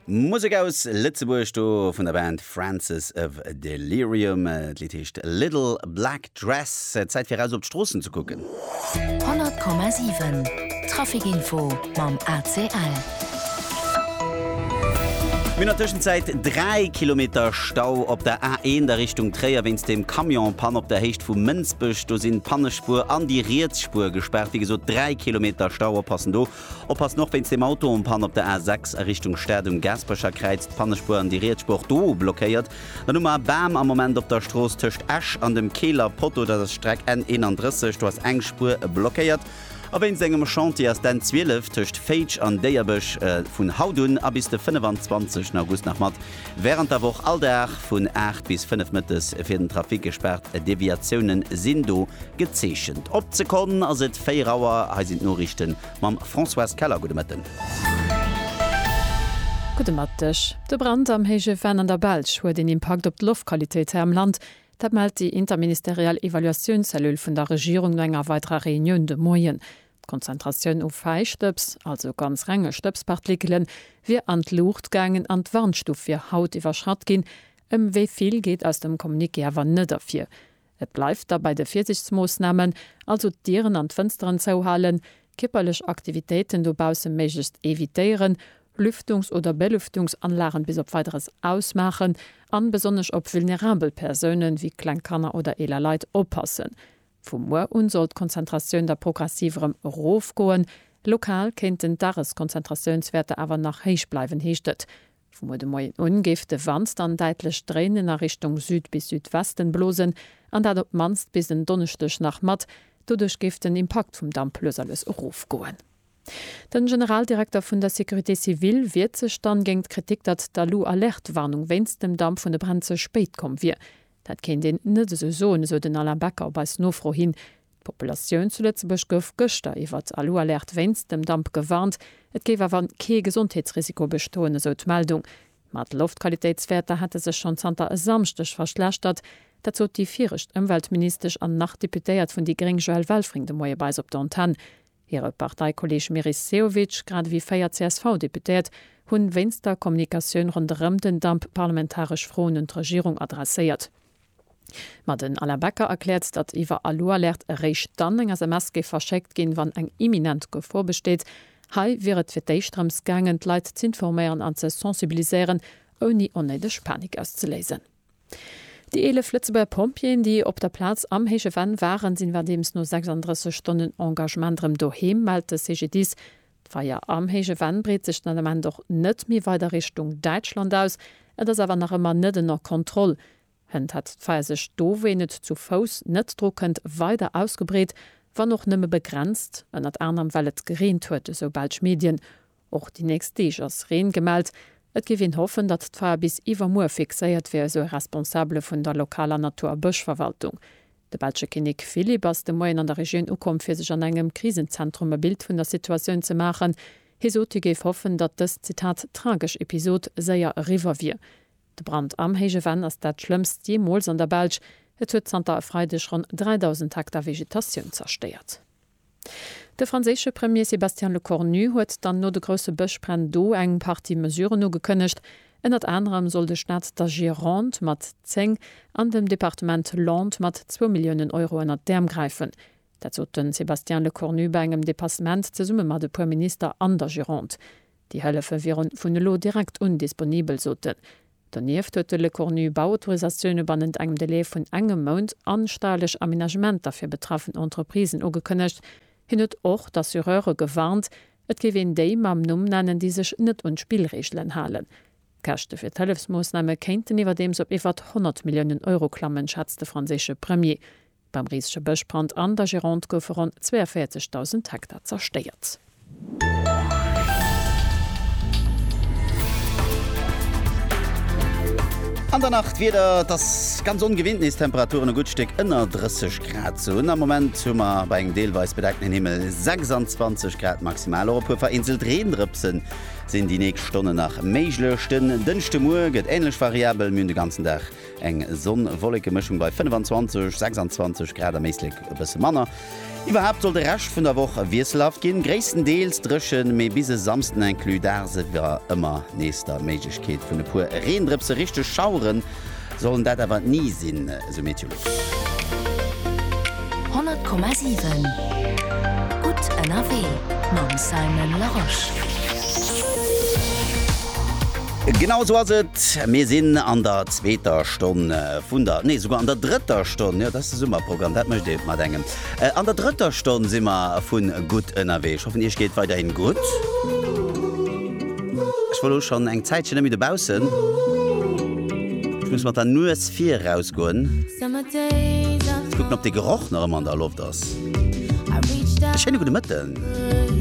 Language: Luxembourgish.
Musek aus Lëtzebuerg do vun der Band Francis of Delirium. D'Lidd heescht Little Black Dress. Zäit fir eraus op d'Stroossen ze kucken. 100,7 Trafic-Info mam ACL. Mir hunn an Tëschenzäit 3 Kilometer Stau op der A1 a Richtung Tréier wéinst dem Camion-Panne op der Héicht vu Mënsbech. Do sinn d'Pannespuer an déi riets Spuer gespaart. Wéi gesot 3 Kilometer Stau, oppassen do! Oppassen, och wéinst dem Auto en panne op der A6 a Richtung Stad um Gaasperecherkräiz, d'Pannespuer an déi riets Spuer do blockéiert. Dann hu mer e Bam am Moment op der Strooss tëscht Esch an dem Keeler Potto, dat ass d'Streck N31, do ass eng Spuer blockéiert. A wéinst engem Chantier ass d'N12 tëscht Féitsch an Déierbech vun haut un a bis de 25 August nach mat Wärend der Woch all Dag vun 8 bis 5 Mëttes fir den Trafic gespaart, Deviatioune sinn do gezeechent. Op d'Sekonn ass et 4 Auer, hei sinn d'Noriichte mam Françoise Keller. Gudde Mëtten. Gudde Mëtteg. De Brand am Héije Venn an der Belsch huet een Impakt op d'Loftqualitéit hei am Land. Dat mellt déi interministeriell Evaluatiounszellule vun der Regierung no enger weiderer Reunioun de Moien. D'Konzentratioun u Fäistëbs, also ganz renge Stëbspartikelen, wier an d'Luucht gaangen an d'Warnstuf wier haut iwwerschratt ginn. Ëm wéi vill geet aus dem Communiqué awer net ervir. Et bleift da bei de Virsiichtsmoossnamen, also d'Dieren an d'Fënsteren zouhalen, kierperlech Aktivitéiten dobausse méiglechst evitéieren, Lüftungs oder Belüftungsanlagen bis op Weideres ausmaachen an besonnesch op vulnerabel Persounen, wéi kleng Kanner oder eeler Leit, oppassen. Vu muer un soll d'Konzentratioun da progressiv erëm erofgoen. Lokal kéinten d'Dageskonzentratiounswäerter awer nach héich bleiwen, heescht et. Vu muer de Moien un géif de Wand dann däitlech dréinen a Richtung Süd bis Südwesten blosen, an dat op d'mannst bis en Donneschdeg nach mat. Doduerch géif den Impakt vum Damp lues a lues erofgoen. De Generaldirekter vun der Sécurité civile wiert sech dann géingt d'Kritik, datt d'Alu-Alerte-Warnung wéinst dem Damp vun de Bränn ze spéit komm wier. Dat kéint een net esou soen, esou den Alain Becker op eis Nofro hin. D'Populatioun zu Lëtzebuerg gouf gëschter iwwert Alualerte wéinst dem Damp gewarnt. Et géif awer kee Gesondheetsrisiko bestoen, esou d'Meldung. Ma d'Loftqualitéitswäerter hätte sech schonn zanter e Samschdeg verschlechtert. Dat sot déi viregt Ëmweltministesch an nach Deputéiert vun déi gréng Joëlle Welfring de Moie bei eis op der Antenn. Hire Parteikolleeg Meris Sehovic, grad ewéi véier CSV-Deputéiert, hunn wéinst der Kommunikatioun ronderëm den Dump parlamentaresch Froen un d'Regierung adresséiert. Ma den Alain Becker erkläert, datt iwwer Alualerte eréischt dann eng SMS géif verschéckt ginn, wann eng imminent Gefor besteet. Hei wier et fir d'éischt drëms gaangen, d'Leit z'informéieren an ze sensibiliséieren, ouni onnéideg Panik auszeléisen. Déi 11 Lëtzebuerger Pompjeeën, déi op der Plaz am héije Venn waren, sinn iwwerdeems no 36 Stonnen Engagement erëm doheem, mellt de CGDIS. D'Feier am héije Venn breet sech den Ament och net méi weider Richtung Däitschland aus. Et ass awer nach ëmmer net ënner Kontroll. Hënt hätt d'Feier sech do, wou een et zu Fouss net dru kënnt, weider ausgebreet, wann och nëmme begrenzt, ënnert anerem well et gereent huet, esou belsch Medien. Och déi nächst Deeg ass Reen gemellt. Et géif een hoffen, datt d'Fae bis iwwermuer fixéiert wier, esou e Responsabele vun der lokaler Natur a Bëschverwaltung. De belsche Kinnek Philippe ass de Moien an der Regioun ukomm, fir sech an engem Krisenzentrum e Bild vun der Situatioun ze maachen. Hie sot, hie géif hoffen, datt dës, Zitat, tragesch Episod séier eriwwer wier. De Brand am Héije Venn ass dat schlëmmst jeemools an der Belsch. Et huet zanter e Freideg ronn 3.000 Hektar Vegetatioun zerstéiert. De franséische Premier Sébastien Lecornu huet dann no de grousse Bëschbränn do eng Partie Mesuren ugekënnegt. Ënnert anerem soll de Staat der Gironde mat 10 an dem Departement Landes mat zwou Milliounen Euro ënnert d'Äerm gräifen. Dat sot de Sébastien Lecornu bei engem Depassement zesumme mat e puer Minister an der Gironde. Déi Hëllefe wieren vun elo direkt un disponibel, sot de Donieft huet de Lecornu Bauautorisatioune bannent engem Delai vun engem Mount a steierlech Aménagementer fir betraffen Entreprisen ugekënnegt. Hien huet och d'Assureure gewarnt, et géif een déi mam Numm nennen, déi sech net un d'Spillreegelen halen. D'Käschte fir d'Hëllefsmoossname kéinten iwwerdeems op iwwert 100 Milliounen Euro klammen, schätzt de franséische Premier. Beim risege Bëschbrand an der Gironde goufe ronn 42.000 Hektar zerstéiert. An der Nacht d'Wieder, Et ass ganz ongewinnt, nees Temperaturen e gutt Stéck ënner 30 Grad ze hunn. Am Moment hu mer bei engem deelweis bedeckten Himmel 26 Grad maximal. Och e puer vereenzelt Reendrëpse sinn déi nächst Stonnen nach méiglech. Den Dënschdemuer gëtt änlech variabel, mir hunn de ganzen Dag Eng Sonn-Wolleke-Mëschung bei 25, 26 Grad, am Éislek e bësse manner. Iwwerhaapt soll de Rescht vun der Woch wiesselhaft ginn, gréisstendeels dréchen, mee bis e Samsden inclus daags iwwer ëmmer nees der Méiglechkeet vun e puer Reendrëpse. Richteg Schaueren sollen dat awer ni sinn, esou Meteolux. 100,7 Gutt ënnerwee mam Simon Larosche. Genau esou ass et, mir sinn an der zweeter Stonn vun der, nee souguer an der drëtter Stonn, jo dat ass de Summerprogramm, dat mécht ee mat engem, an der drëtter Stonn si mer vun Gutt ënnerwee. Ech hoffen iech geet weiderhin gutt. Ech war elo schonn eng Zäitchen net méi dobaussen, ech muss mat der Nues viraus goen, kucken op de Geroch nach ëmmer an der Loft ass. E schéine gudde Mëtten.